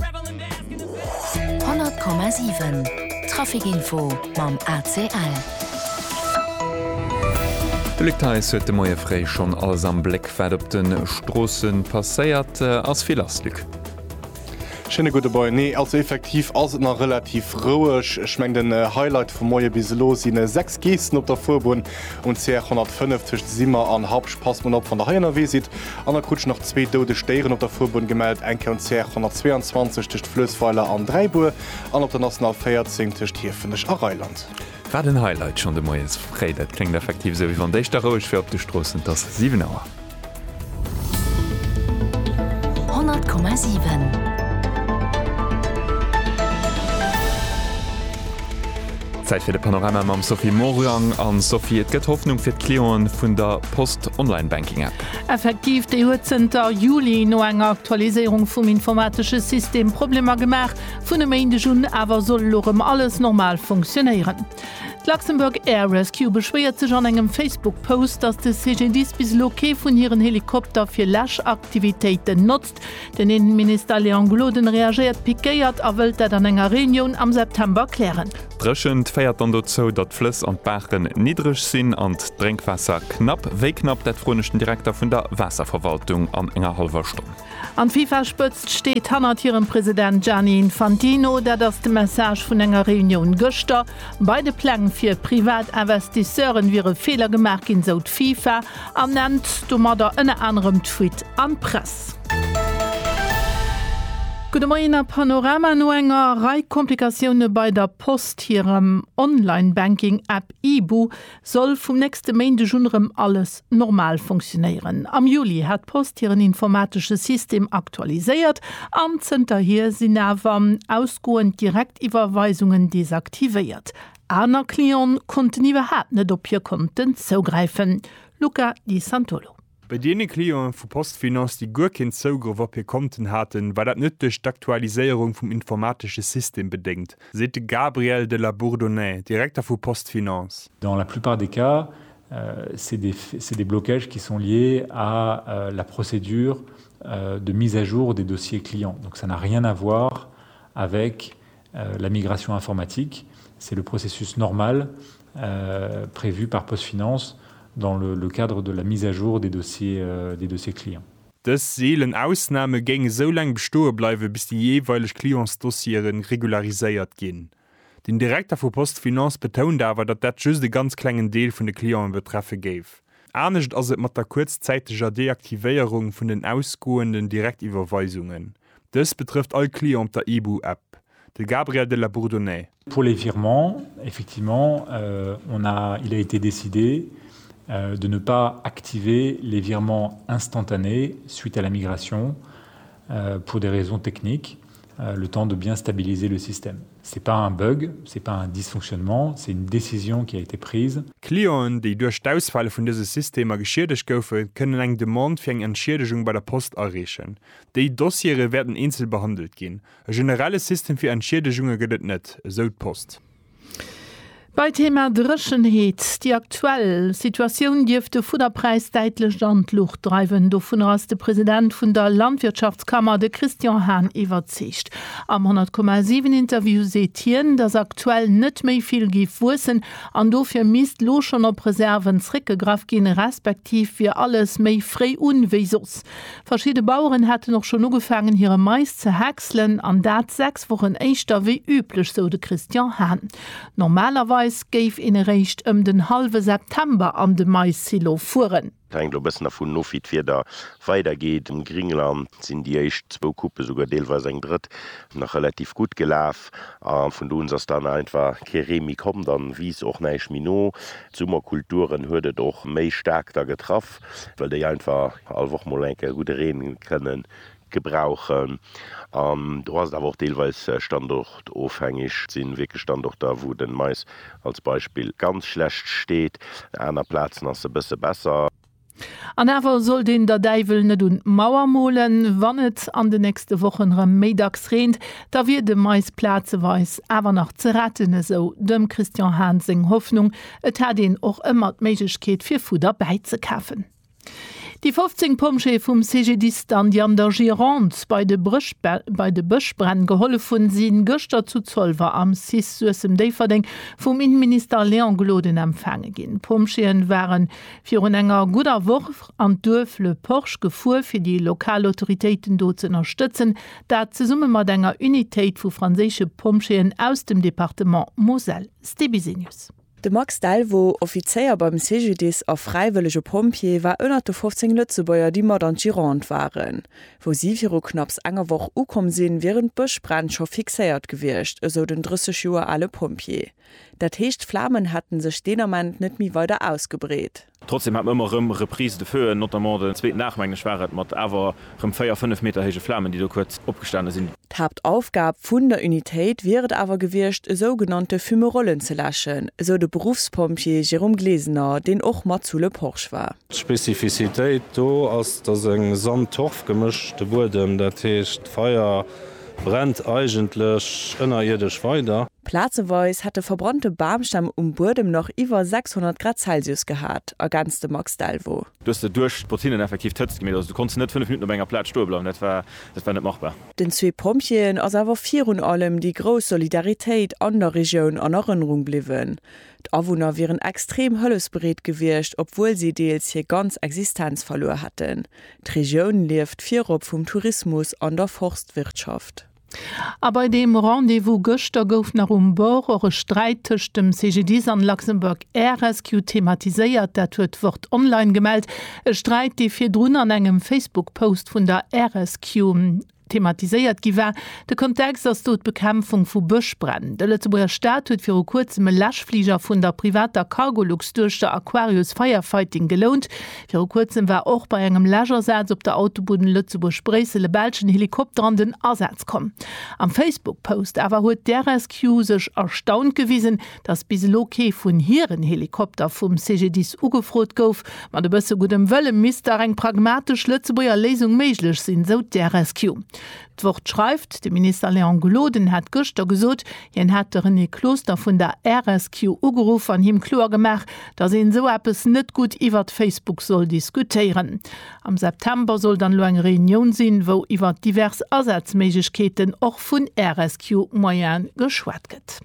100,7 Trafic-Info mam ACL. De Luc Theis huet de Moie fréi schonn alles am Bléck, wat op de Stroosse passéiert. Ass vill lass, Luc? Schéine gudde Moien. Nee, also effektiv ass et nach relativ roueg. Ech mengen, den Highlight vum Moie bis elo si 6 Geessen op der Fuerbunn um CR 105 tëscht Simmer an Habsch. Passt mol op, wann der hei ënnerwee sidd. An der Krutsch nach zwee doudeg Déieren op der Fuerbunn gemellt, eng Kéi um CR 122 tëscht Fluessweiler an Dräibur an op der National 14 tëscht Hiefenech a Reiland. Wat en Highlight schonn de Moies fréi. Dat kléngt effektiv esou, wéi wann d'éischter roueg wär op de Stroossen. Et ass 7 Auer. 100,7. Zäit fir de Panorama mam Sophie Morang. An Sophie, et gëtt Hoffnung fir d'Clienten vun der Post Onlinebänk. Networking App. Effektiv, déi huet zënter Juli no enger Aktualiséierung vum informatesche System Problemer gemaach. Vun e Méindeg un awer soll elo rëm alles normal funktionéieren. D'Luxembourg Air Rescue beschwéiert sech an engem Facebook-Post, datt de CGDIS bis elo kee vun hiren Helikopter fir Läschaktivitéiten notzt. Den Innenminister Léon Gloden reagéiert pikéiert a wëllt dat an enger Reunioun am September klären. D'Dréchent féiert dann dozou, datt d'Flëss an d'Baachen niddreg sinn an d'Drénkwaasser knapp. Wéi knapp, dat froen ech den Direkter vun der Waasserverwaltung an enger hallwer Stonn. An d'Fifa-Spëtzt steet hannert hirem President Gianni Infantino. Dat ass de Message vun enger Reunioun gëschter. Bei de Pläng fir Privatinvestisseuren wiere Feeler gemaach ginn, sou d'Fifa. An nennt domadder ënner anerem d'Fuite an d'Press. Gudde Moien a Panorama, No enger Rei Komplikatioune bei der Post hirem Online-Banking App Ibu soll vum nächste Méindeg un erëm alles normal funktionéieren. Am Juli hat d'Post hiren informatesche System aktualiséiert an zënterhier sinn awer ausgoend Direktiwwerweisungen desaktivéiert. Aner Cliente konnten iwwerhaapt net op hir Konten zougräifen, Luca Di Santolo. Bei deene Cliente vu PostFinance, déi guer keen Zougrëff op hir Konten haten, war dat net duerch d'Aktualiséierung vum informatesche System bedéngt, seet de Gabriel de la Bourdonnais, Direkter vu PostFinance. Dans la plupart des cas, c'est des, c'est des blocages qui sont liés à la procédure de mise à jour des dossiers clients. Donc ça n'a rien à voir avec La migration informatique, c'est le processus normal prévu par PostFinance dans le cadre de la mise à jour des dossiers clients. Dës seelen Ausname géing esou laang bestoe bleiwe bis déi jeeweileg Clientsdossiere regulariséiert ginn. Den Direkter vu PostFinance betount awer, datt dat just e ganz klengen Deel vun de Cliente betreffe géif. Anescht ass et mat der kuerzzäiteger Deaktivéierung vun den ausgoenden Direktiwwerweisungen. Dëst betrëfft all Client op der IBU App. De Gabriel de la Bourdonnais. Pour les virements, effectivement, on a, il a été décidé de ne pas activer les virements instantanés suite à la migration pour des raisons techniques, le temps de bien stabiliser le système. Ce n'est pas un bug, ce n'est pas un dysfonctionnement, c'est une décision qui a été prise. Clienten, déi duerch d'Ausfäll vun dëse Systemer geschiedegt goufen, kënnen eng Demande fir eng Entschiedegung bei der Post areechen. Déi Dossiere wäerten eenzel behandelt ginn. E generelle System fir Entschiedegunge gëtt et net, esou d'Post. Bei Thema Dréchenheet, Déi aktuell Situatioun dierft de Fudderpräis däitlecht an d'Luucht dreiwen. Dovunner ass de President vun der Landwirtschaftskammer, de Christian Hahn iwwerzeegt. Am 100, 7 Interview seet hien, datt aktuell net méi vill géif wuessen an dofir misst lo schonn op Reserven zréckgegraff ginn, respektiv wier alles méi fréi un wéi soss. Verschidde Baueren hätten och schonn ugefaangen hire Mais ze häckselen, an dat 6 Wochen éischter wéi üblech, sou de Christian Hahn. Normalerweis géif een eréischt ëm den hallwe September an de Mais-Silo fueren. Et hänkt elo e bëssen dervun of, wéi d'Wieder weidergeet. Am Gringland sinn déi éischt zwou Coupe, souguer deelweis eng drëtt, nach relativ gutt gelaf. A vun do un ass dann einfach kee Ree méi komm. Dann wiisst och näischt méi no. D'Summerkulturen huet et och méi staark da getraff. well déi einfach all Woch mol enk e gudde Reen kënnen gebrauchen an do ass et awer och deelweis standortofhängeg. Et sinn wierklech Standorter, wou de Mais als Beispill ganz schlecht steet, aner Plazen ass e bësse besser. An awer sollt een der Däiwel net un d'Mauer molen, Wann et an de nächste Wochen erëm méi dacks reent, da wier de Mais plazeweis awer nach ze retten, esou dem Christian Hahn seng Hoffnung, Et hat een och ëmmer d'Méiglechkeet fir Fudder bäizekafen. Déi 15 Pompjeeë vum CGDIS dann, déi an der Gironde bei de bei de Bëschbränn gehollef hunn, si gëschter zu Zolwer am cis Suessem-Déifferdeng vum Innenminister Léon Gloden empfaange ginn. D'Pompjeeë ware virun enger gudder Woch an d'Duerf Le Porge gefuer, fir déi lokal Autoritéiten do ze ënnerstëtzen, dat zesumme mat enger Unitéit vu franséische Pompjeeën aus dem Departement Moselle. Stebisenius. De Max Delvaux, Offizéier beim CGDIS a fräiwëllege Pompjee, war ënnert de 15 Lëtzebuerger, déi mat an d'Gironde waren. Wou si viru knapps enger Woch ukomm sinn, wieren d'Bëschbränn scho fixéiert gewiescht, esou den 30 Joer ale Pompjee. Dat heescht, d'Flamen hätte sech deen Ament net méi weider ausgebreet. Trotzdem hat mer ëmmer erëm Reprises de feu, notamment den zweeten Aach, mengen ech, war et, mat awer erëm véier, fënnef Meter héije Flamen, déi do kuerz opgestane sinn. D'Haaptaufgab vun der Unitéit wier et awer gewiescht, esou genannte Fumerollen ze läschen, esou de Beruffspompjee Jérôme Glesener, deen och mat zu Le Porch war. D'Spezifisitéit do ass, dass e Sand-Torf-Gemësch de Buedem, dat heescht d'Feier, Brennt eigentlech ënnerierdesch weider? Plazeweis hätt de verbrannte Bamstämm um Buedem nach iwwer 600 Grad Celsius gehat, ergänzt de Max Delvaux. Du hues der duerch d'Botinnen effektiv d'Hëtzt gemeet. Also du konnts net 5 Minutten op enger Plaz stoe bleiwen, dat war dat war net machbar. Den zwee Pompjeeën ass awer virun allem déi grouss Solidaritéit an der Regioun an Erënnerung bliwwen. D'Awunner wieren extrem hëllefsbereet gewiescht, obwuel si deels hir ganz Existenz verluer hätten. D'Regioun lieft virop vum Tourismus an der Forstwirtschaft. A bei deem Rendez-vous gëschter gouf nach um Bord och e Sträit tëscht dem CGDIS an Luxembourg Air Rescue thematiséiert. Dat huet d'Wort Online gemellt. E Sträit, dee virdrun an engem Facebook-Post vun der Air Rescue Thematiséiert gi war, De Kontext ass do d'Bekämpfung vu Bëschbränn. De Lëtzebuerger Staat huet viru kuerzem e Läschfliger vun der privater Cargolux duerch der Aquarius Firefighting gelount. Viru kuerzem war och bei engem Läschasaz op der Autobunn Lëtzebuerg-Bréissel e belschen Helikopter an den Asaz komm. Am Facebook-Post awer huet d'RSQ sech erstaunt gewisen, dass bis elo kee vun hiren Helikopter vum CGDIS ugefrot gouf. Mat e bësse guddem Wëlle misst dach eng pragmatesch Lëtzebuerger Léisung méiglech sinn, esou d'RSQ. D'Wort schreift, De Minister Léon Gloden hätt gëschter gesot, hien hätt de René Closter vun der RSQ ugeruff an him kloer gemaach, dass een esou eppes net gutt iwwert Facebook soll diskutéieren. Am September soll dann elo eng Reunioun sinn, wou iwwert divers Asazméiglechkeeten, och vun RSQ-Moyene, geschwat gëtt.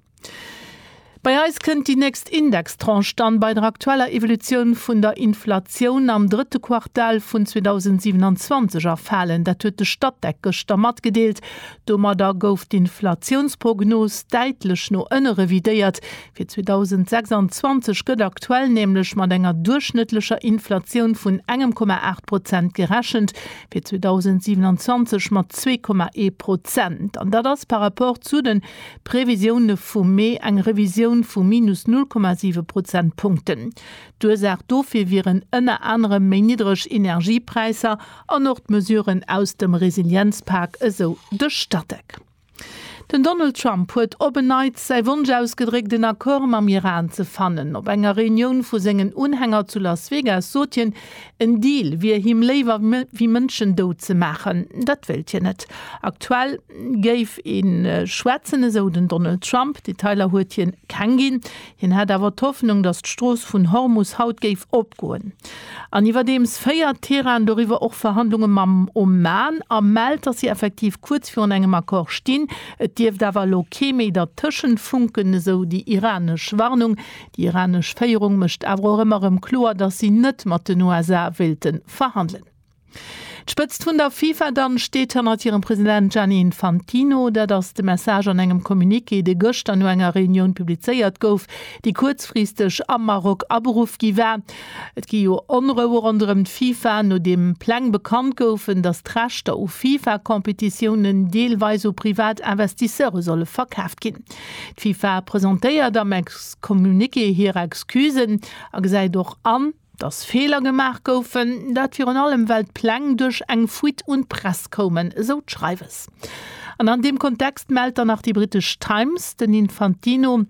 Bei eis kënnt déi nächst Indextranche dann bei der aktueller Evolutioun vun der Inflatioun am drëtte Quartal vun 2027 erfalen. Dat huet de Statec gëschter matgedeelt. Domadder gouf d'Inflatiounsprognos däitlech no ënne revidéiert. Fir 2026 gëtt aktuell nämlech mat enger duerchschnëttlecher Inflatioun vun engem Komma aacht Prozent gerechent, fir 2027 mat zwee Komma ee Prozent. An dat ass par rapport zu de D'Previsioune vum Mee, eng Revisioun vu minus 0,7 Prozentpunkten. D'Ursaach dofir wieren ënner anerem méi niddreg Energiepräisser an och d'Mesuren aus dem Resilienzpak, esou de Statec. Den Donald Trump huet op en Neits säi Wonsch ausgedréckt, en Accord mam Iran ze fannen. Op enger Reunioun vu sengen Unhänger zu Las Vegas sot hien, En Deal wier him léiwer wéi Mënschen dout ze maachen, dat wéilt hien net. Aktuell géif een schwätzen, esou den Donald Trump. Detailer huet hien keng ginn. Hien hätt awer d'Hoffnung, datt d'Strooss vun Hormus haut géif opgoen. An iwwerdeems féiert Teheran doriwwer och Verhandlunge mam Oman a mellt, datt si effektiv kuerz virun engem Accord stinn. Et dierft awer elo kee méi dertëschent funken, esou déi iranesch Warnung. Déi iranesch Féierung mécht awer och ëmmer erëm kloer, datt si net mat den USA wéilte verhandelen. D'Spëtzt vun der FIFA dann steet hannert hirem President Gianni Infantino. Dat ass de Message an engem Communiqué, dee gëschter no enger Reunioun publizéiert gouf, déi kuerzfristeg am Maroc aberuff gi war. Et gi jo Onroue ronderëm d'FIFA, nodeem Pläng bekannt goufen, datt d'Rechter u FIFA-Competitiounen deelweis u privat Investisseure solle verkaaft ginn. D'FIFA presentéiert am Ex-Communiqué hir Excusen a gesäit och an, datt Feeler gemaach goufen. Dat virun allem, well d'Pläng duerch eng Fuite un d'Press koumen, esou d'Schreiwes. An an deem Kontext mellt dann nach déi britesch Times, den Infantino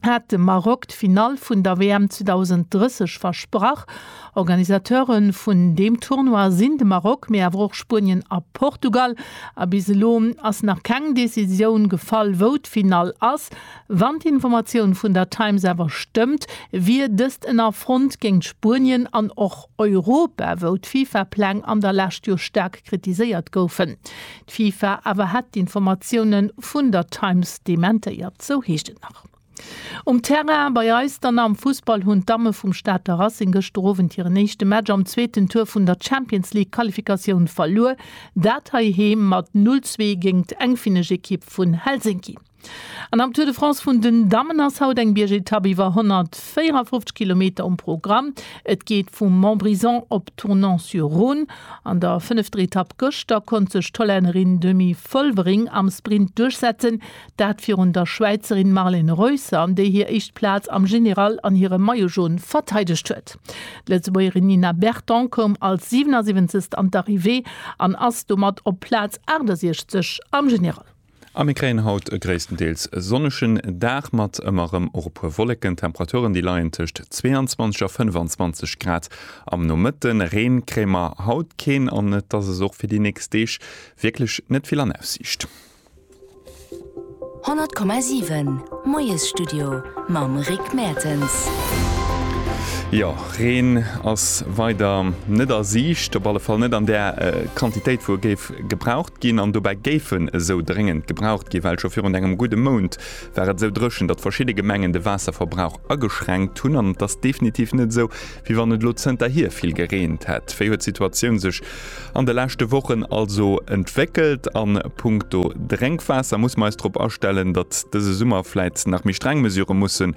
hat dem Maroc d'Finall vun der WM 2030 versprach. Organisateure vun deem Tournoi sinn de Maroc, mee awer och Spuenien a Portugal. A bis elo ass nach keng Decisioun gefall, wou d'Finall ass. Wann d'Informatioun vun der Times awer stëmmt, wier dëst en Affront géint Spuenien an och Europa, wou d'FIFA-Pläng an der Lescht jo staark kritiséiert goufen. D'FIFA awer hätt d'Informatioune vun der Times dementéiert, sou heescht et nach. Um Terrain bei eis dann am Fussball hunn d'Damme vum Stater Racing gëschter Owend hiren éischte Match am zweeten Tour vun der Champions League Qualifikatioun verluer, dat heiheem mat 0, 2 géingt eng finnesch Ekipp vun Helsinki. An am Tour de France vun den Dammen ass haut eng Biergetapp iwwer 154 Kilometer um Programm. Et geet vu Montbrison op Tournon-sur-Rhône. An der fënnefter Etapp gëschter konnt sech d'Hollännerin Demi Vollering am Sprint duerchsetzen, Dat virun der Schwäizerin Marlen Reusser, déi hir éischt Plaz am General an hirem Maillot Jaune verteidegt huet. D'Lëtzebuergerin Nina Berton koum als 77. an d'Arrivée an ass domat op Plaz 68 am General. A mir kréien haut e gréisstendeels sonnegen Dag mat ëmmer erëm och e puer Wolleken. D'Temperaturen, déi leien tëscht 22 a 25 Grad am Nomëtte. Reen kréie mer haut keen an et ass es och fir déi nächst Deeg wierklech net vill an Aussiicht. 100,7 Moiesstudio mam Rick Mertens. Jo, Reen ass weider net a Siicht, op alle Fall net an där Quantitéit, wou e géif gebraucht ginn. An dobäi géif en esou dréngend gebraucht ginn, well scho virun engem gudde Mount war et esou dréchen, datt verschidde Gemengen de Waasserverbrauch ageschränkt hunn. An et ass definitiv net esou, Wéi wann et elo zënterhier vill gereent hätt. Wéi huet d'Situatioun sech an de leschte Wochen also entwéckelt? A punkto Drénkwaasser musse mer eis drop astellen, datt dëse Summer vläit nach méi streng Mesurë musse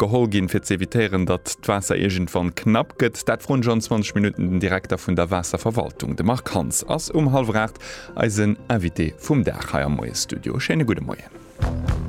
geholl ginn, fir z'evitéieren, datt d'Waasser iergendwann knapp gëtt? Dat froen ech an 20 Minutten den Direkter vun der Waasserverwaltung. De Marc Hans ass um hallwer 8 eisen Invité vum Dag hei am Moie-Studio. Schéine gudde Moien.